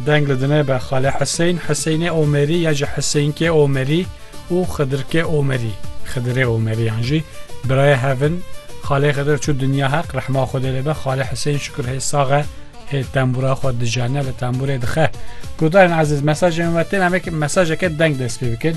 Deng li dine be Xalê Hiseyn, Hiseynê Omerî ya jî Hiseynkê Omerî û Xidirkê Omerî, Xidirê Omerî yan jî birayê hev in. Xalê Xidir çû dinya heq rehma Xwedê lê be. Xalê Hiseyn şikir hê sax e, hê tembûra xwe dijene li tembûrê dixe. Guhdarên ezîz mesajên me têne em ê mesajeke deng dest pê bikin.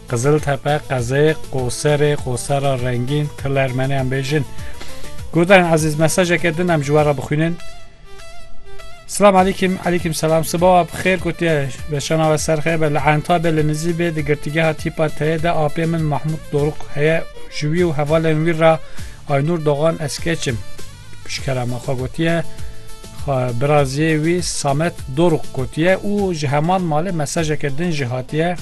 Qiziltepe, Qezê, Qoserê, Qosera Rengîn, Til Ermeniyan bêjin. Guhdarên ezîz mesajeke din em ji we re bixwînin. Selam alîkim, alîkim selam. Sibawa bi xêr gotiye ve şana ve serxê be li enta be li nizî bê di girtîgeha tîpa teyê de apê min Mahmud Doruk heye ji wî û hevalên wî re Aynur Dogan ez keçim. Pişkera me xwe gotiye biraziyê wî Samet Doruk gotiye û ji heman malê mesajeke din jî hatiye.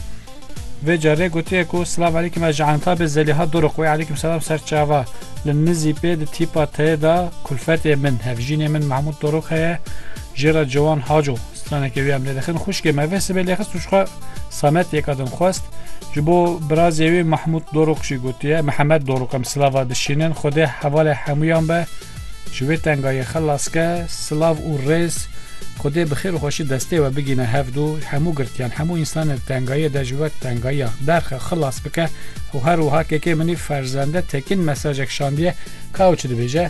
Vê carê gotiye ku Silav Elîkim ez ji Entabê Zelîha Doruk wê Elîkim Selam Serçava li nizî pê di tîpa tê de kulfetê min hevjînê min Mahmud Doruk heye. Jê re Ciwan Haco straneke wî em lê dixin, Xwişkê me vê sibê lêxist û jixwe Samet yeka din xwest. Ji bo birazê wî Mahmût Dorûk jî gotiye, Mihemed Dorûk em silava dişînin, Xwedê hevalê hemûyan be, ji wê tengayê xilas ke, silav û rêz Xwedê bi xêr û xweşî destê we bigîne hev du, hemû girtiyan, hemû însanên di tengayê de ji wek tengayiya derxe xilas bike û her wiha kekê min î ferzende tekin mesajek şandiye ka ew çi dibêje.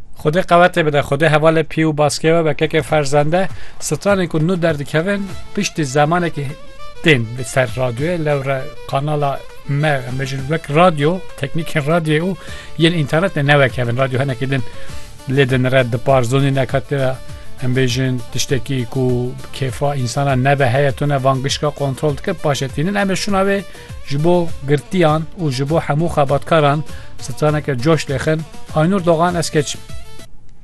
Xwedê qewetê bide, Xwedê hevalê pî û baskê we be keke ferzende. Stranên ku nû derdikevin piştî zemanekî tên li ser radyoyê lewre kanala me em bêjin wek radyo teknîkên radyoyê û yên înternetê newekevin radyo henekî din lê din re dipar zonî neka tê re em bêjin tiştekî ku kêfa însana nebe heye tune van gişka kontrol dike paşetînin em ê şûna wê Ji bo girtiyan û ji bo hemû xebatkaran straneke coş lêxin Aynur Dogan ez keçim.